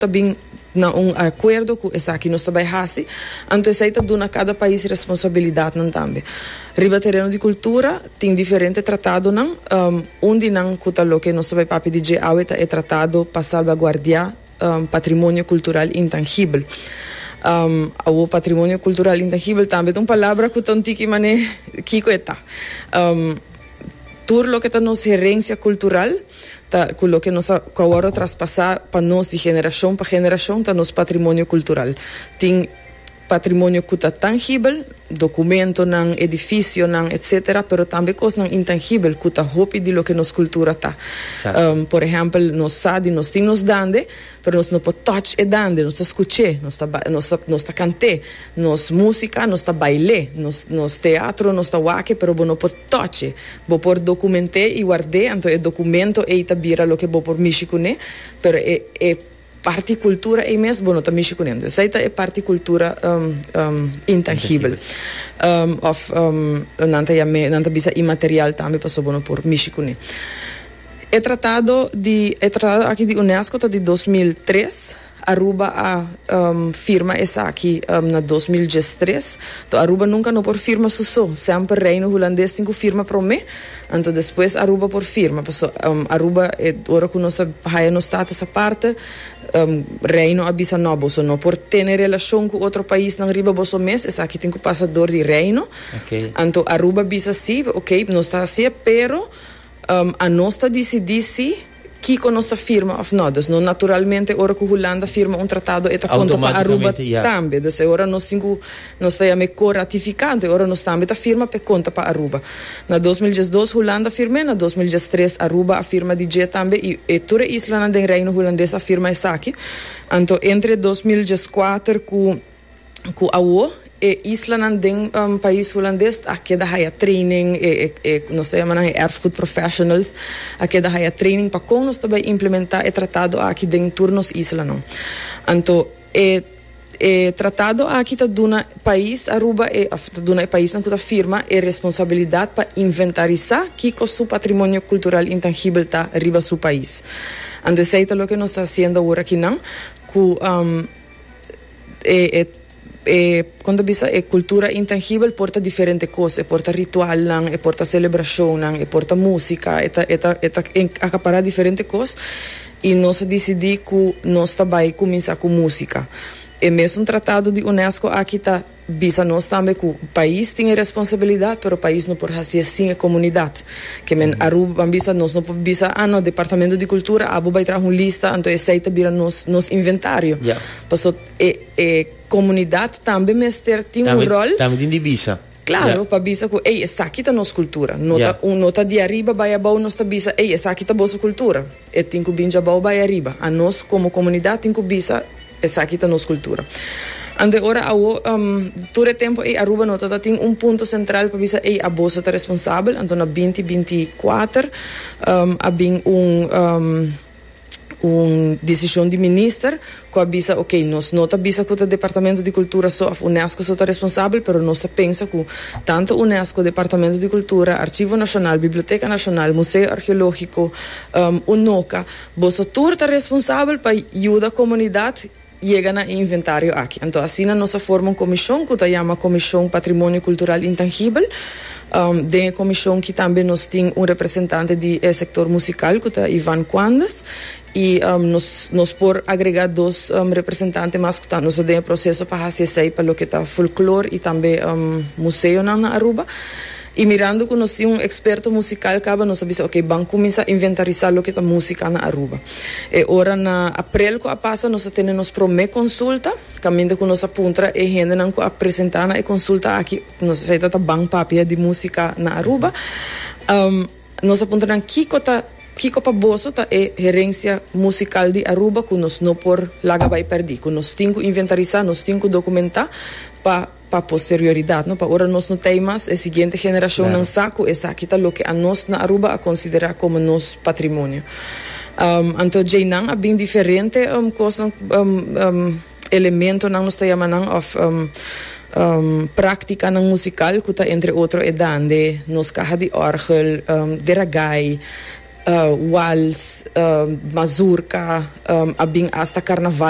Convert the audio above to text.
ta bin na un akuerdo ku esaki nos ta bai hasi, anto esei ta duna kada pais responsabilidatnan tambe. Riba tereno di kultura tin diferente tratadonan, un di nan ku ta loke nos ta bai papia di dje awe ta e Tratado pa Salbaguardiá Patrimonio Kultural Intangibel. Awo patrimonio kultural intangibel tambe ta un palabra ku ta un tiki manera kiko e ta. Tur loke ta nos herencia cultural ta cu loke nos a cu a wordo traspasa pa nos di generacion pa generacion ta nos patrimonio cultural. Tin patrimonio cu ta tangibel, documentonan, edificionan, etc. Pero tambe cosnan intangibel cu ta hopi di loke nos cultura ta. Exacto. Por ehempel nos sa di nos tin nos dande Pero nos no por touch e dande, nos ta scuch'é, nos ta ba, nos ta, nos ta cant'é, nos musica, nos ta bail'é, nos, nos teatro, nos ta wake, pero bo no por touch'é. Bo por document'é y ward'é, anto e documento ey ta bira loke bo por mishi cun'é, pero e, e parti cultura ey mes bo no ta mishi cun'é. Entonces esey ta e parti cultura, um, um, intangibel, um, of, um, nan ta yam'é, nan ta bisa inmaterial tambe pasobra bo no por mishi cun'é. E tratado di e tratado aki di UNESCO ta di dos mil tres. Aruba a firma esaki na dos mil diestres. Toh Aruba nunka no por firma su so. Semper Reino Hulandes tin ku firma prome, anto despues Aruba por firma. Paso Aruba e ora ku nos a haya nos status aparte Reino a bisa no boso no por tene relashon ku otro paisnan riba boso mes. Esaki tin ku pasa dor di Reino. Anto Aruba bisa si, okay nos ta hasié pero. A nos ta disidí si kiko nos ta firma òf nò. Dus nos naturalmente ora ku Hulanda firma un tratado e ta konta pa Aruba tambe. Dus e ora nos tin ku nos ta yam'é ko-ratifikante, e ora nos tambe ta firma p'e konta pa Aruba. Na dos mil diesdos Hulanda firm'é, na dos mil diestres Aruba a firma di dje tambe i e tur e islanan den Reino Hulandes a firma esaki. Anto entre dos mil dieskuater ku cu awo e islanan den pais Hulandes a keda haya training, e e nos ta yama nan e erfgoed professionals a keda haya training pa con nos ta bay implementa e tratado aki den tur nos islanan. Anto e e tratado aki ta duna pais Aruba e of ta duna e paisnan cu ta firma e responsabilidad pa inventarisa kico su patrimonio cultural intangibel ta riba su pais. Anto esey ta loke nos ta haciendo awor aki nan cu. kon ta bisa e kultura intangibel por ta diferente kos e por ta ritualnan e por ta selebrashonnan e por ta músika e ta e ta e ta akapará diferente kos i nos a disidí ku nos ta bai kuminsá ku músika e mesun tratado di unesco aki ta Bisa nos tambe ku pais tin e responsabilidat pero pais no por hasié sin e komunidat. Ke men Aruba ban bisa nos no por bisa a no departamento di kultura abo bai traha un lista anto esei ta bira nos nos inventario. Paso e e komunidat tambe mester tin un ròl. Tambe tin di bisa. Klaro pa bisa ku ey esaki ta nos kultura no ta no ta di ariba bai abou nos ta bisa ey esaki ta boso kultura. E tin ku bin djabao bai ariba. A nos komo komunidat tin ku bisa esaki ta nos kultura. Anto ora awo, tur e tempu ei Aruba no ta ta tin un punto sentral pa bisa ei a boso ta responsabel. Anto na binti binti i kuater a bin un un desishon di minister ku a bisa ok nos no ta bisa ku ta departamento di kultura so of unesco so ta responsabel pero nos ta pensa ku tanto unesco departamento di kultura archivo nacional biblioteca nacional museo archeologico unoca boso tur ta responsabel pa yuda comunidad yega na e inventario aki anto asina nos a forma un comision ku ta yama comision patrimonio cultural intangibel den e comision ki tambe nos tin un representante di e sector musical ku ta Ivan Quandes I nos nos por agregá dos representante mas ku ta nos ta den e proseso pa hasi esei pa loke ta folklor i tambe museonan na Aruba. I mirando ku nos tin un eksperto musikal kaba nos a bisa ok ban kuminsá inventarisá loke ta músika na Aruba. E ora na aprel ku a pasa nos a tene nos promé konsulta kaminda ku nos a puntra e hendenan ku a presentá na e konsulta aki nos a esei ta ta ban papia di músika na Aruba. Nos a puntra nan kiko ta kiko pa boso ta e herensia musikal di Aruba ku nos no por laga bai pèrdí, ku nos tin ku inventarisá, nos tin ku dokumentá pa pa posterioridad, no? Pa ora nos no ta ei mas, e siguiente generashonnan sa ku esaki ta loke anos na Aruba a konsiderá komo nos patrimonio. Anto djeinan a bin diferente kosnan. elementonan nos ta yama nan of practicanan musical cu ta entre otro e dande nos caha di orgel, gueragay, wals, mazurca, a bin hasta carnaval.